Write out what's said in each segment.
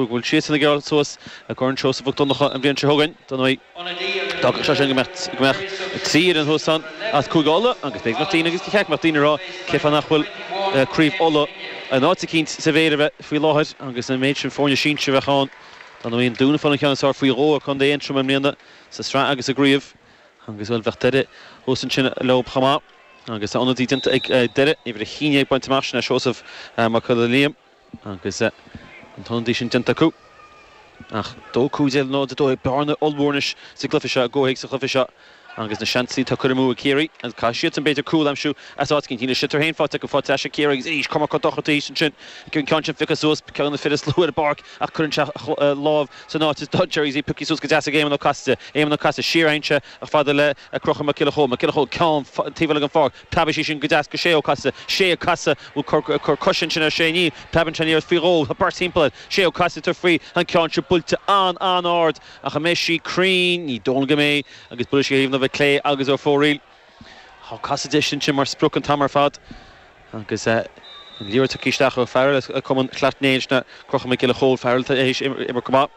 go bhfuil siadsan ag éirí suas i gCorn Seosamh Mhic Dhonncha an bhliain seo chugainn. D'fhágfadh sé sin go mbeadh trí fhoireann thuas ann as Cúige Uladh agus b'éigean daoine, agus ba cheart go mbeadh daoine, ag rá cé fáth nach bhfuil Craobh Uladh in áit eicínt sa bhféilire bheith faoi láthair agus an méid sin foirne sinsir a bheadh ann. Dá mbeadh an Dún ag fáil an ceann is fearr faoi dhó ar Chontae Aontroma i mbliana sa tsraith agus sa gcraobh agus, bhuel, bheadh Doire thuas ansin leo chomh maith agus tá ionadaí déanta ag Doire, uimhir a naoi, ag baint amach, sin é Seosamh Mac Giolla Liam. agus an t-ionadaí sin déanta acu. Ach dó cúig déag, náid dó dhéag, bearna ollmhór anois sa gcluiche seo, i gcomhthéacs an chluiche seo, agus na seansanna atá curtha amú ag Ciarraí, agus caithfidh siadsan, b'fhéidir, cúl a aimsiú as áit eicínt. Níl an sliotar féin faighte acu, faighte ar ais ag Ciarraí, agus arís, coimirce dochreidte arís ansin agus an ceann sin pioctha suas, ceann de na fir is lú ar an bpáirc, ach cuireann sé a lámh san áit is doiligh, Jerry Z, pioctha suas go deas ag Éamon Ó Casaide, Éamon Ó Casaide, siar a théann sé chomh fada le Crochúr Mac Giolla Chóill, Mac Giolla Chóill, go dtí an taobh eile den pháirc. Preabfaidh sí sin go deas go Sé Ó Casaide, Sé ag casadh, bhfuil cor, cor coise ansin ar Shé, níl, preabann an liathróid faoi dhó, tá beirt timpeall air, Sé Ó Casaide, tá faoi, tá an ceann seo buailte an, an-ard, ach an mbeidh sí cruinn, ní dóigh liom go mbeidh, agus buailfidh sí ar thaobh na láimhe clé agus ar fóraoil, tá Casaide ansin mar sprioc an t-am ar fad, agus eh, an liathróid tugtha isteach ó fhear eile as cumann Shleacht Néill, sin é Crochúr Mac Giolla Chóill, fear eile atá tar éis imirt go maith,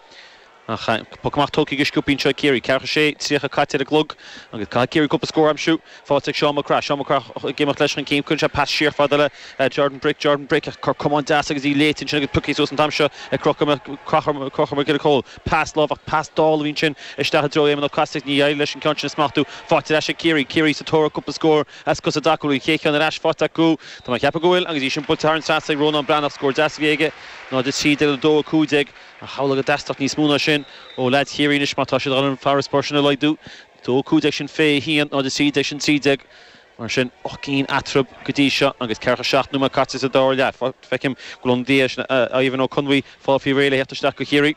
Poc amach tógtha go sciobtha anseo ag Ciarraí. Ceathracha 6:30 caite ar an gclog agus caithfidh Ciarraí cúpla scór a aimsiú. Faighte ag Seán Mac Craith. Seán Mac Craith ag imeacht leis chun cinn. Cuireann sé pas siar fada le Jordan Brick. Jordan Brick ag cur camán deas agus í léite ansin agus pioctha suas an t-am seo ag Crochúr Mac Giolla Chóill. Pas láimhe, pas dall a bhí ansin isteach i dtreo Éamon Ó Casaide ach níor éirigh leis an ceann sin a smachtú. Faighte ar ais ag Ciarraí. Ciarraí sa tóir ar cúpla scór as cosa D'Acunha. An chéad cheann ar ais faighte acu. Tá mé ag ceapadh go bhfuil agus í sin buailte thar an trasna ag Rónán Breathnach. Scór deas a bhí aige. 0-13, 2-15 Ach is amhlaidh go dteastóidh níos mó ná sin ó leaids Chiarraí anois má tá siad chun an farasbarr sin a laghdú? 2 15 sin 21, 0 13 sin 13. Mar sin, ocht gcinn eatarthu go dtí seo agus ceathracha seacht nóiméad caite sa dara leath. Feicim go bhfuil an t-ionadaí sin, Ivan Ó Conmhuí, ag fáil faoi réir le theacht isteach do Chiarraí.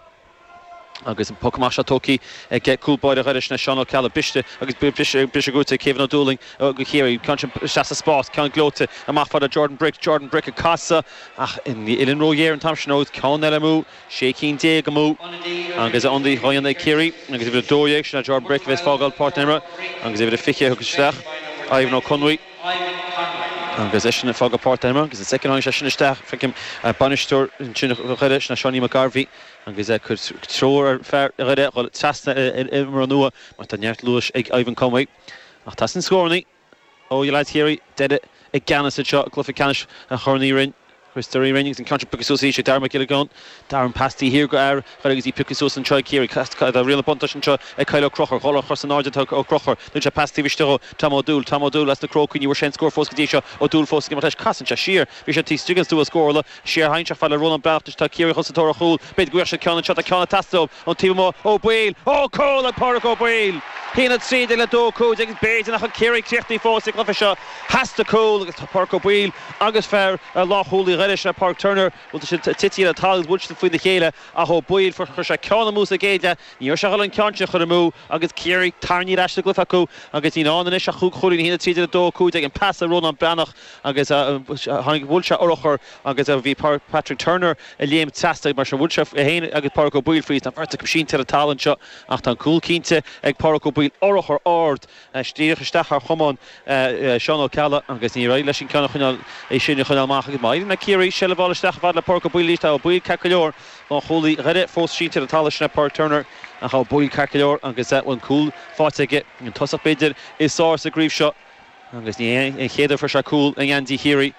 Agus an poc amach seo tógtha ag cúl báire Dhoire, sin é Seán Ó Ceallaigh. Briste agus briseadh buaite ag Kevin Ó Dúlaing do Ciarraí. Ceann sin isteach sa spás, ceann gleoite amach fada Jordan Brick. Jordan Brick ag casadh. Ach an uillinn róghéar an t-am sin agus ceann eile amú, sé cinn déag amú agus ionadaí á dhéanamh ag Ciarraí agus uimhir 12, sin é Jordan Brick, a bheas ag fágáil páirc na himeartha agus uimhir a 20 a thiocfaidh isteach, Ivan Ó Conmhuí. Agus eisean ag fágáil páirc na himeartha agus an soicind a tháinig seisean isteach, feicim, bainisteoir ansin Dhoire, sin é Seáinín Mac Garbhí agus é ag cur treoir ar fear Dhoire a dhul trasna ar imreoir nua mar tá neart luais ag Ivan Conway. Ach teastaíonn scórannaí. ó leaids Chiarraí, Doire i gceannas anseo i gcluiche ceannais Chorn Uí Rinn, Chríostóir Uí Rinn agus an ceann seo pioctha suas arís ag Darragh Mac Giollagáin. Darragh an pas taobh thiar go Fhear Ghail agus í pioctha suas anseo ag Ciarraí. Cast caith atá riail na buntáiste anseo ag Kyle Ó Crochúir. Ag dul ar chosa in airde atá Ó Crochúir. Thug sé pas taobh istigh do Tom Ó Dúill. Tom Ó Dúill as na Crócaigh. Ní bhfuair sé aon scór fós go dtí seo. Ó Dúill fós ag imeacht leis. Casann sé siar. Bhí sé taobh istigh den stua scórála. Siar thainn seo fad le Rónán Breathnach anois tá Ciarraí ag dul sa tóir ar chúl. B'fhéidir go bhfuigheadh sé ceann anseo. Tá ceann ag teastáil uaim ón taobh amuigh. Ó Baoill! Ó! Cúl ag Pádraic Ó Baoill! 1 13 le 2 15 agus b'fhéidir nach bhfuil Ciarraí críochnaithe fós sa chluiche seo. Theastaigh cúl agus tá Pádraic Ó Baoill agus fear ar lánchúlaí Dhoire, sin é Pauric Turner, bhuel tá siad titithe le talamh agus bhuail siad faoina chéile ach Ó Baoill, fuair, chuir sé ceann amú sa gcéad leath, ní raibh sé ag dhul an ceann sin a chur amú agus Ciarraí tarraingthe ar ais sa gcluiche acu agus níl ann anois ach chúig chúilín. 1 13 le 2 15 an pas ó Rónán Breathnach. Agus tháinig, bhuail sé urchar agus bhí Patrick Turner ag léimt trasna mar sin. Bhuail sé é féin agus Pádraig Ó Baoill fríd, tá an bheirt acu sínte ar an talamh anseo ach tá an cúl cinnte ag Pádraig Ó Baoill, urchar ard díreach isteach thar chamán Seán Ó Ceallaigh agus níor éirigh leis an ceann a choinneáil, é sin a choinneáil amach agus má éiríonn le Ciarraí seilbh a fháil isteach a fhad le Pádraig Ó Baoill arís, tá Ó Baoill ceart go leor lánchúlaí Dhoire, fós sínte ar an talamh, sin é Pádraig Turner ach tá Ó Baoill ceart go leor agus an cúl faighte aige, an tosach b'fhéidir is fearr sa gcraobh seo. Agus ní hé an chéad uair a fuair sé cúl i ngeansaí Chiarraí.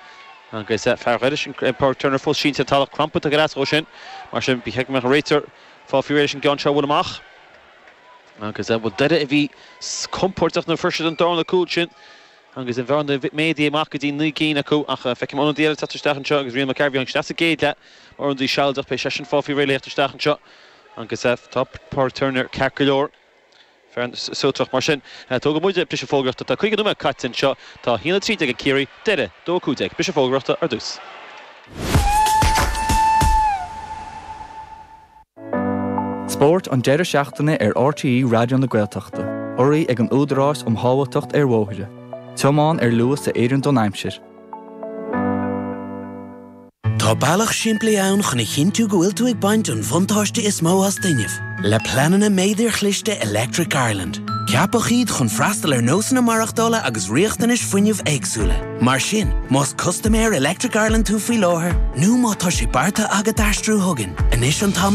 Agus fear Dhoire sin, Pauric Turner, fós sínte ar talamh crampanta go leasach ó shin. Mar sin, ba cheart go mbeadh an réiteoir fáil faoi réir leis an gceann seo a bhaint amach. Agus an bhfuil Doire, a bhí compordach nuair a fuair siad an darna cúl sin, agus an bhearna méadaithe amach go dtí naoi gcinn acu? Ach feicim ionadaí eile ag teacht isteach anseo agus Rian Mac Cearrbhaigh, an cleas sa gcéad leath, mar ionadaí sealadach, beidh seisean fáil faoi réir le theacht isteach anseo. Agus tá Pauric Turner ceart go leor. Fear an Suaitreach mar sin. Tógfaidh muide briseadh fógraíochta. Tá 50 nóiméad caite anseo. Tá 1:13 ag Ciarraí. Doire. 2:15. Briseadh fógraíochta ar dtús. Spórt an deireadh seachtaine ar RTÉ Raidió na Gaeltachta. Urraithe ag an Údarás um Shábháilteacht ar Bhóithre. Tiomáin ar luas a oireann don aimsir. Tá bealach simplí ann chun a chinntiú go bhfuil tú ag baint an bhuntáiste is mó as d'fhuinneamh. Le pleananna Méadair Chliste Electric Ireland, ceapadh iad chun freastal ar nósanna maireachtála agus riachtanais fuinnimh éagsúla. Mar sin, más custaiméir Electric Ireland tú faoi láthair nó má tá sé beartaithe agat aistriú chugainn, anois an t-am is